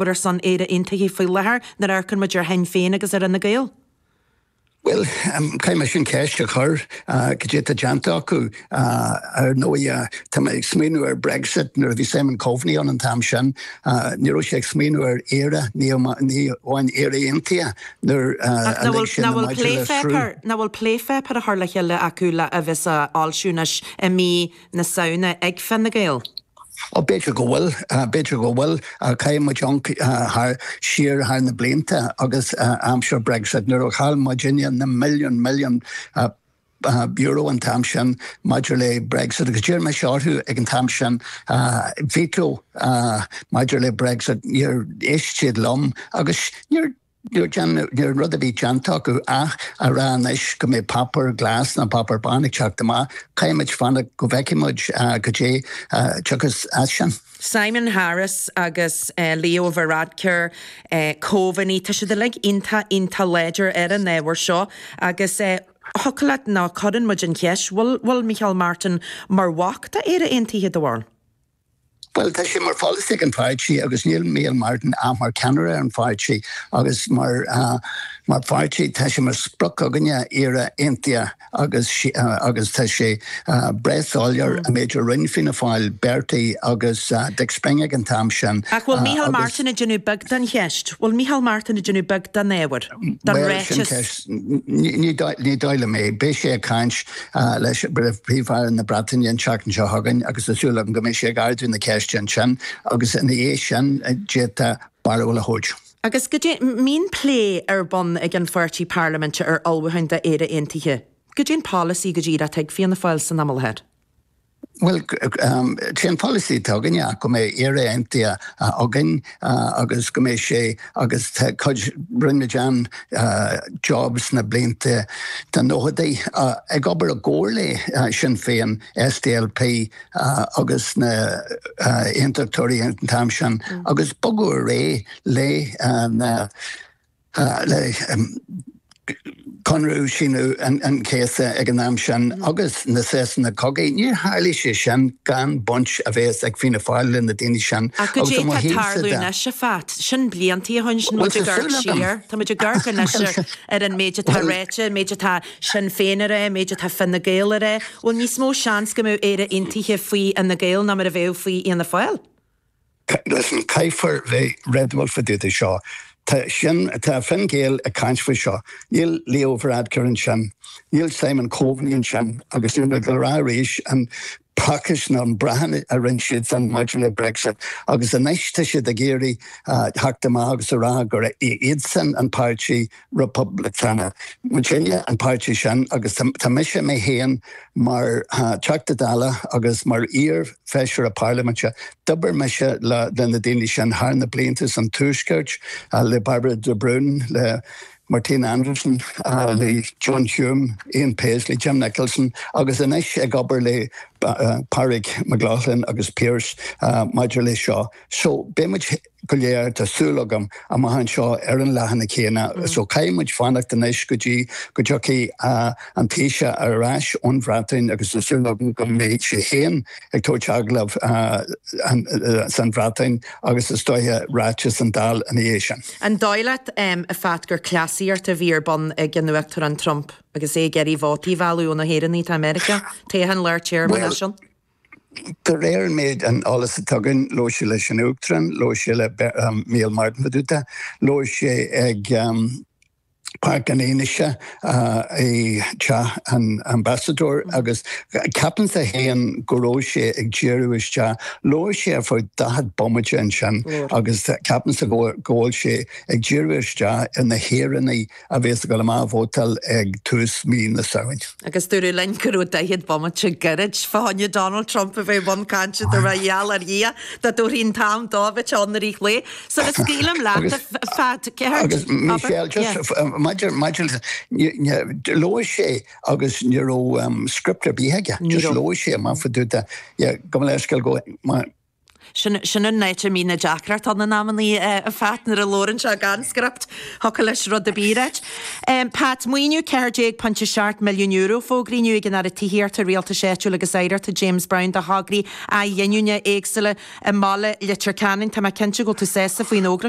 Pat ar son Éire Aontaithe faoi láthair, nuair a amharcann muid ar Shinn Féin agus ar Fine Gael, Bhuel, caithfidh mise an cheist a chur, cad é tá déanta acu? Ar ndóigh, tá mé ag smaoiniú ar Brexit, nuair a bhí Simon Coveney ann an t-am sin, ní raibh sé ag smaoiniú ar Éire, ní amháin Éire Aontaithe, nuair a lig sé na maidí le sruth. Ach nach bhfuil plépháipéar á chur le chéile acu le, a bheas á fhoilsiú anois i mí na Samhna ag Fine Gael? B'fhéidir go bhfuil, b'fhéidir go bhfuil. Caithfidh muid amharc thar siar thar na blianta agus aimsir Brexit nuair a chaill muid muidinne na milliún, milliún, euro an t-am sin maidir le Brexit agus d'iarr mise orthu ag an t-am sin a veto maidir le Brexit. Níor éist siad liom agus níor. Nuair an rud a bhí déanta acu ach a rá anois go mbeidh páipéar glas nó páipéar bán ag teacht amach, caithfimid fanacht go bhfeicfidh muid goidé a thiocfas as sin. Simon Harris agus Leo Varadkar, Coveney, tá siad uilig iontach, iontach láidir ar an ábhar seo agus thiocfadh leat nó cuireann muid an cheist, bhfuil Micheál Martin mar bhac d'Éire Aontaithe de bharr. Bhuel, tá sé mar pholasaí ag an pháirtí, agus níl Micheál Martin ach mar cheannaire ar an pháirtí, agus mar pháirtí tá sé mar sprioc againne Éire aontaithe agus agus tá sé breá soiléir an méid a rinne Fianna Fáil, Bertie agus Dick Spring ag an t-am sin. Ach bhfuil Micheál Martin ag déanamh beag den cheist? Bhfuil Micheál Martin ag déanamh beag den ábhar, den ráiteas? Bhuel, sin ceist. Ní dóigh liom é. Beidh sé ag caint. Ah, leis, Príomh-Aire na Breataine an tseachtain seo chugainn agus tá súil agam go mbeidh sé ag ardú na ceiste ansin agus ina dhiaidh sin d'fhéadfá barúil a thabhairt. Agus goidé, an mbíonn plé ar bun ag an pháirtí parlaiminte ar ullmhúcháin d'Éire Aontaithe. Goidé an polasaí go díreach ag Fianna Fáil san am i láthair? Bhuel, sé an polasaí atá againne go mbeidh Éire Aontaithe againn agus go mbeidh sé agus tá cuid, rinne muid an-job sna blianta, na nóchaidí, ag obair i gcomhar le Sinn Féin, SDLP agus na hAontachtóirí an t-am sin agus bogadh ar aghaidh le na. le conradh Aoine an Chéasta ag an am sin agus na sosanna cogaidh, níor tharlaigh sé sin gan baint a bheith ag Fianna Fáil le na daoine sin. Ach goidé tá tarlú anois, a Phat. Sin bliantaí ó shoin, sin muid ag amharc siar. Tá muid ag amharc anois ar an méid atá ráite, an méid atá Sinn Féin a ráit, an méid atá Fine Gael a ráit. Bhfuil níos mó seans go mbeadh Éire Aontaithe faoi Fhine Gael ná mar a bheadh faoi Fhianna Fáil? Listen, Caithfear bheith réadúil fá dtaobh de seo. Tá sin, tá Fine Gael ag caint faoi seo. Níl Leo Varadkar ansin. Níl Simon Coveney ansin. Agus níl mé ag dul a rá arís an prácás nó an brachán a rinne siadsan maidir le Brexit. Agus anois tá siad ag iarraidh theacht amach agus a rá gur iadsan an páirtí Republican. Muidinne an páirtí sin agus tá mise mé féin mar Theachta Dála agus mar iar-Fheisire Parlaiminte, d'obair mise le na daoine sin thar na blianta san Tuaisceart, le Bairbre de Brún, le Martina Anderson, le John Hume, Ian Paisley, Jim Nicholson agus anois ag obair le Pádraig Mac Lochlainn agus Pearse maidir leis seo. So beidh muid go léir, tá súil agam, amach anseo ar an leathanach céanna. So caithfidh muid fanacht anois go dtí go dtiocfaidh an Taoiseach ar ais ón Bhreatain agus tá súil agam go mbeidh sé féin ag tabhairt agallamh sa Bhreatain agus is dóiche ráiteas san Dáil ina dhiaidh sin. An dóigh leat, a Phat, gur cleasaíocht a bhí ar bun ag an Uachtarán Trump agus é ag iarraidh vótaí a mhealladh ó na hÉireannaigh atá i Meiriceá, toghcháin lár téarma, mar sin? De réir an méid an eolas a tugann labhair sé leis an Uachtarán, labhair sé le Micheál Martin fá dtaobh de, labhair sé ag Páirc an Fhionnuisce i dTeach an Ambasadóir agus ceapaimse fhéin go raibh sé ag díriú isteach, labhair sé ar feadh daichead bomaite ansin agus ceapaimse go bhfuil sé ag díriú isteach ar na hÉireannaigh. a bhéas ag dul amach a vótáil ag tús mí na Samhain. Agus dúradh linn go raibh 40 bomaite gairid fá choinne Donald Trump a bheith i mbun cainte do Ra gheall ar Dhia dá dtabharfaí an t-am dó a bheith ann ar Oích' Lae. Sula scaoilim leat a Phat, céard? Agus Michelle, just maidir, maidir, labhair sé agus ní raibh script ar bith aige, just labhair sé amach fá dtaobh de, yeah, go bhfuil leithscéal go, mar, Sin sin an áit a mbíonn na deacrachtaí in amannaí, a Phat, nuair a labhrann sé gan script, thiocfadh leis rud ar bith a ráit. Pat, Maoiniú €14.7 milliún fógraithe inniu ag an Aire Tithíochta, Rialtais Áitiúil agus Oidhreachta, James Browne do thograí athghiniúna éagsúla i mBaile Leitir Ceanainn. Tá mé cinnte go bhfuil tú sásta faoin fhógra seo.